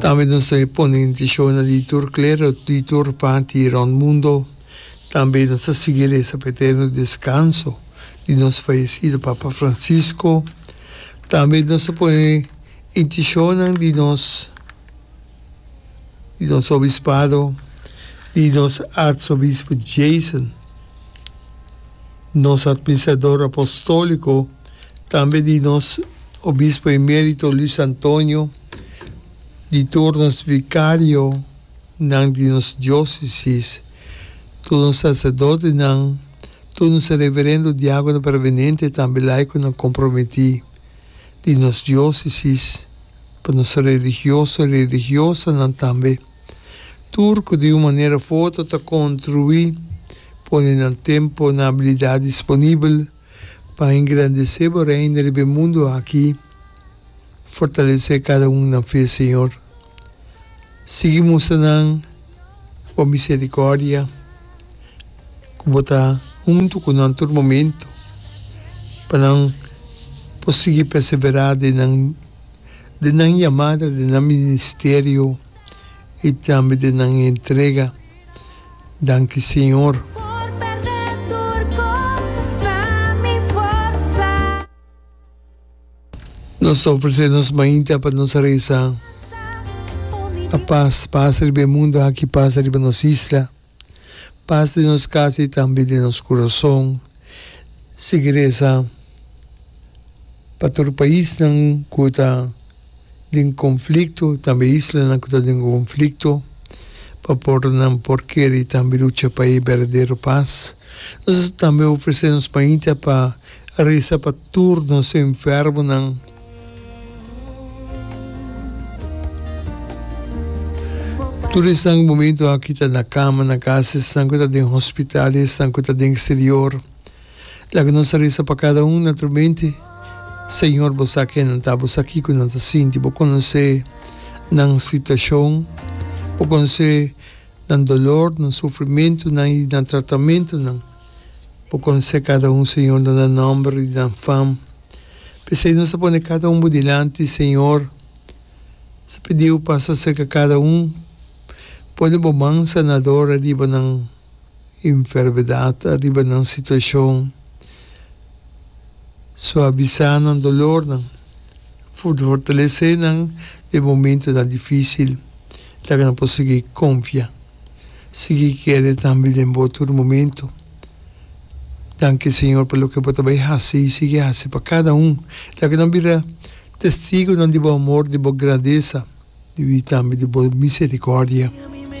Tambe nos a pone intishonnan di tur klero, di tur parti rònt mundo. Tambe nos a sigui resa pa e eterno deskanso di nos fayesido Papa Francisco. Tambe nos a pone intishonnan di nos, di nos obispado, di nos artsobispo Jason, nos atministrador apostòliko, tambe di nos obispo emérito Luis Antonio. Di tur nos vikarionan di nos diósesis, tur nos saserdotenan, tur nos reverendo diákonan permanente tambe laikonan komprometí di nos diósesis, pa nos religioso i religiosanan tambe, tur ku di un manera fu otro ta kontruí, pone nan tempu, nan abilidat disponibel, Pa engrandece bo Reino riba e mundo aki, fortalece cada un na fe, Señor. Sigui mustra nan bo misericordia, cu bo ta hunto cu nan tur momento, pa nan por sigui persevera den nan den nan yamada, den nan ministerio y tambe den nan entrega. Danki Señor. Nos ta ofresé nos mainta pa nos resa pa pas pasa riba e mundu aki, pasa riba nos isla, pas den nos kasa i tambe den nos kurason. Sigui resa pa tur paisnan ku ta. den conflicto, tambe islanan cu ta den conflicto, pa por nan por kere tambe lucha pa e berdadero paz. Nos ta tambe ofrece nos mainta pa reza pa tur nos enfermonan. Tur esnan cu momento aki ta na cama, na casa, esnan cu ta den hospital y esnan cu ta den exterior. Laga nos a resa pa kada un na tur mente, Señor, Bo sa ke nan ta. Bo sa kiko nan ta sinti. Bo konosé nan situashon. Bo konosé nan dolor, nan sufrimentunan i nan tratamentunan. Bo konosé kada un, Señor, nan nan nòmber i nan fam. P'esei nos ta pone kada un Bo dilanti, Señor. Nos ta pidiu pasa serka kada un. Pone Bo man sanador riba nan. enfermedad ariba nan situacion, suavisá nan dolornan, fortalecé nan den momentonan difícil, laga nan por sigui confia, sigui kere tambe den bo tur momento. Danki Señor pa loke bo ta bay haci y sigui haci pa cada un. Laga nan bira testigonan di bo amor, di bo grandeza y tambe di bo misericordia.